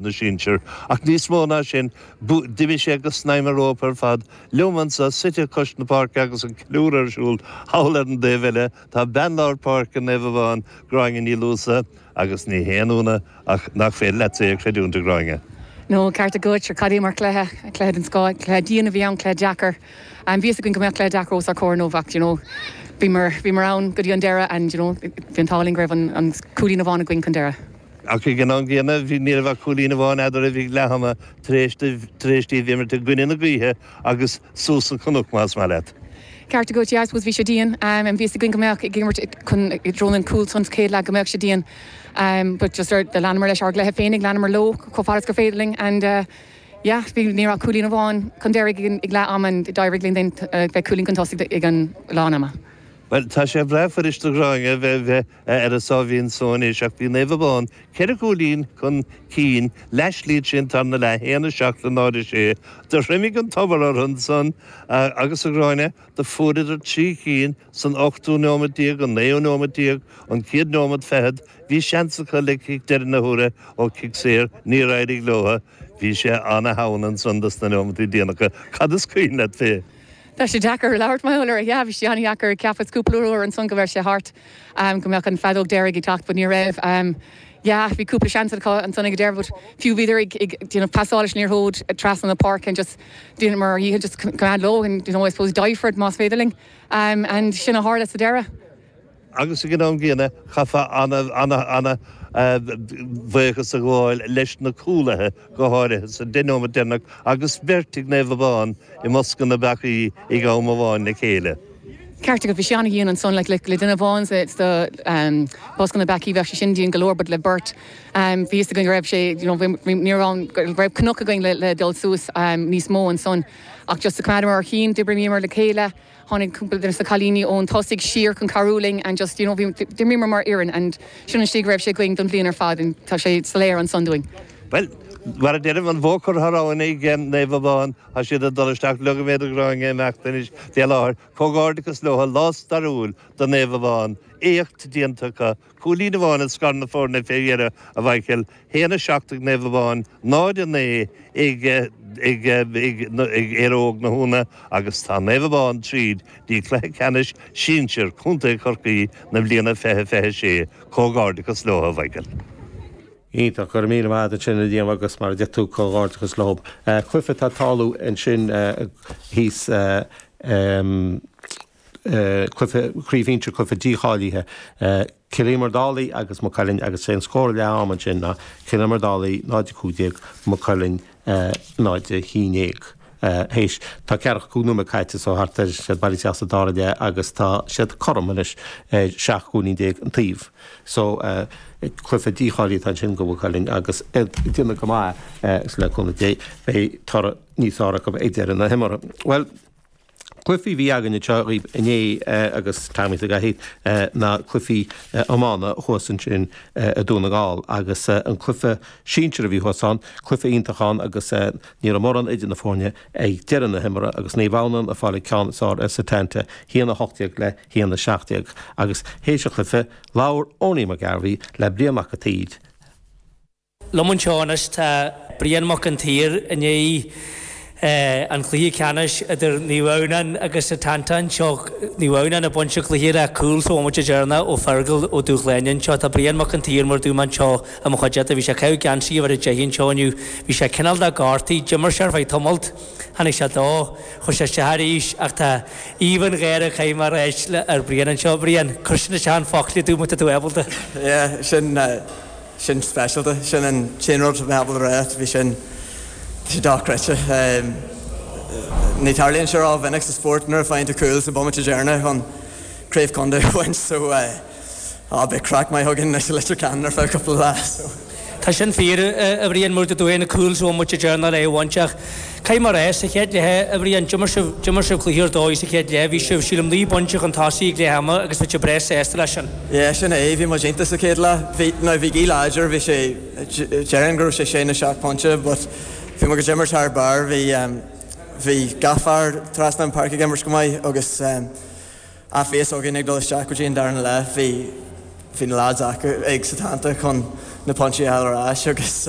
na sinsear, ach níos mó ná sin, d'imigh sé go snaidhm an rópa ar fad. Liom anseo, suite cois na páirce agus an ceiliúradh ar siúl thall ar an dtaobh eile, tá bean lár páirce Naomh Abán, Gráinne Ní Luasa, agus ní haon ionadh ach nach féidir leat é a chreidiúint, a Ghráinne. No, ceart agat, sure, cad é mar chluiche, cluiche den scoth, cluiche dian a bhí ann, cluiche deacair. Bhí fhios againn go mbeadh cluiche deacair os ár comhair inniu ach, do you know, bhíomar, bhíomar ann go dtí an deireadh and, you know, bhí an t-ádh linn go raibh an, an cúilín amháin againn chun deireadh. Ach ag an am gcéanna, bhí ní raibh ach cúilín amháin eadraibh ag leath ama tar éis díbh imirt i gcoinne na gaoithe agus suas an cnoc, más maith leat. Ceart agat, yeah, I suppose bhí sé dian, bhí fhios againn go mbeadh ag imirt i dtreo an cúl san sa chéad leath go mbeadh sé dian but just ar, leanamar leis ár gcluiche féinig, leanamar leo chomh fada is gur féidir linn and yeah, bhí, ní raibh ach cúilín amháin chun deiridh ag leath ama and d'éirigh linn bheith cúilín chun tosaigh ag an lán ama. Bhuel, tá sé breá fuirist do Ghráinne bheith, bheith. Ar a sáimhín só anois ach bhí Naomh Abán ceithre cúilín chun cinn leath slí tríd an tarna leath haon a seacht le náid a sé. Do thriomaigh an tobar ortha ansan agus a Ghráinne do fuaireadar trí cinn san ochtú neomad déag, an naoú neomad déag, an céad neomad feichead bhí seans acu le cic deire na huaire ó chic saor níor éirigh leotha bhí sé ana theann ansan dos na neomataí déanacha. Cad is cuimhin leat fé? Tá sé deacair labhairt mar gheall air, sea. Bhí sé ana dheacair. Cheapas cúpla uair ansan go raibh sé thart. go mbeadh an feadóg deiridh ag teacht but ní raibh yeah bhí cúpla seans acu ansan ag an deireadh but fiú bhíodar ag ag you know pasáil leis an liathróid trasna na páirce and just dheineamar ár ndícheall just coimeád leo and you know I suppose die for it más féidir linn and sin a tharla sa deireadh. agus ag an am gcéanna chaithfeá ana ana ana bhuíochas a ghabháil leis na cúlaithe go háirithe sa deich nóimeat deireanach agus beirt ag Naomh Abán i mbosca na bpeacaí ag am amháin le chéile. ceart agat, bhí sé an-dhian ansan, like le duine amháin sa sa bosca na bpeacaí bheadh sé sin dian go leor but le beirt bhí fhios againn go raibh sé you know bhí ní raibh ann go raibh cnoc againn le le dul suas níos mó ansan ach just choimeádamar ár chinn d'oibríomar le chéile tháinig cúpla de na cailíní ón tosaigh siar chun cabhrú linn and just you know bhí d'imríomar mar fhoireann and sin an slí go raibh sé againn don bhliain ar fad and tá sé soiléir ansan dúinn. Bhuel, mar a deirim, an bua curtha a raibh in ag Naomh Abán. Tá siad ag dul isteach leogfaimíd do Ghráinne imeacht anois den láthair. Comhghairdeachas leotha, lá stairiúil do Naomh Abán. Éacht déanta acu. Cúilín amháin a scar na foirne fé dheireadh, a Mhaidhcil. Haon a seacht ag Naomh Abán, 0 a naoi ag ag Éire Óg na hUamhanna agus tá Naomh Abán tríd dtí cluiche ceannais sinsir Contae Chorcaí na bliana fiche fiche sé. Comhghairdeachas leotha, a Mhaidhcil. Iontach, go raibh míle maith agat as sin a dhéanamh agus mar a deir tú, comhghairdeachas leo. Cluife atá ag tarlú ansin thíos cluife Craobh Shinsir cluife dícháilithe Cill Íomair Dálaigh agus Maigh Cuilinn agus sé an scór ag leath am ansin ná Cill Íomair Dálaigh 0-15 Maigh Cuilinn náid a haon déag. Théis, tá ceathracha cúig nóiméad caite so thart ar leath bealaigh isteach sa dara leath agus tá siad cothrom anois ar sheacht gcúilín déag an taobh so. Cluiche dícháilithe atá ansin do Mhaigh Cuilinn agus iad ag déanamh go maith agus le cúnamh Dé beidh toradh níos fearr acu ag deireadh na himeartha. Bhuel. Cluichí a bhí againn anseo dhaoibh inné agus táimid ag éirí na cluichí iomána thuas ansin i Dún na nGall agus an cluiche sinsir a bhí thuas ann, cluiche iontach ann agus ní raibh mórán idir na foirne ag deireadh na himeartha agus Naomh Adhamhnáin ag fáil an ceann is fearr ar Setanta, hAon 18 le hAon 17. Agus théis an chluiche, labhair Owenie McGarvey le Brian Mac an tSaoir. liom anseo anois tá Brian Mac an tSaoir i ndiaidh an cluiche ceannais idir Naomh Adhamhnáin agus Setanta anseo, Naomh Adhamhnáin ag baint an chluiche le cúl sa bhomaite deireanach ó Fergal Ó Dúshláine anseo tá Brian Mac an tSaoir mar a dúirt mé anseo i mo chuideachta, bhí sé ag caitheamh geansaí uimhir a deich anseo inniu, bhí sé cineál gortaithe, d'imir sé ar feadh tamalt, tháinig sé dó, chuaigh sé isteach arís ach tá aoibh an gháire ag caitheamh mar áit ar Bhrian anseo. Brian, cuir sin isteach i bhfoclaí domh má tá tú ábalta. Yeah, sin. sin speisialta. Sin an t-aon rud a bheadh le rá faoi sin. Tá sé dochreidte. Ní tharlaíonn sé ró mhinic sa spórt nuair a faigheann tú cúl sa bhomaite deireanach chun craobh contae a bhaint so ah beidh craic maith againn anois i Leitir Ceanainn ar feadh cúpla lá so. Tá sin fíor, a Bhriain, mar a dúirt tú cúl sa bhomaite deireanach le é a bhaint ach Cé mar é sa chéad leath, a Bhriain? D'imir sibh, d'imir sibh cluiche ar dóigh sa chéad leath. Bhí sibh, sílim, naoi bpointe chun tosaigh ag leath ama agus bhí sibh breá sásta leis sin. Yeah, sin é, bhí muid iontach sa chéad leath. Bhí, now bhí gaoth láidir, bhí sé, déarfainn go raibh sé sé nó seacht bpointe but bhí muid ag imirt thar barr, bhí, bhí gach fear trasna an páirce ag imirt go maith agus á bhí a fhios againn ag dul isteach go dtí an darna leath, bhí, bhí na lads acu, ag Setanta chun na pointí a fháil ar ais agus.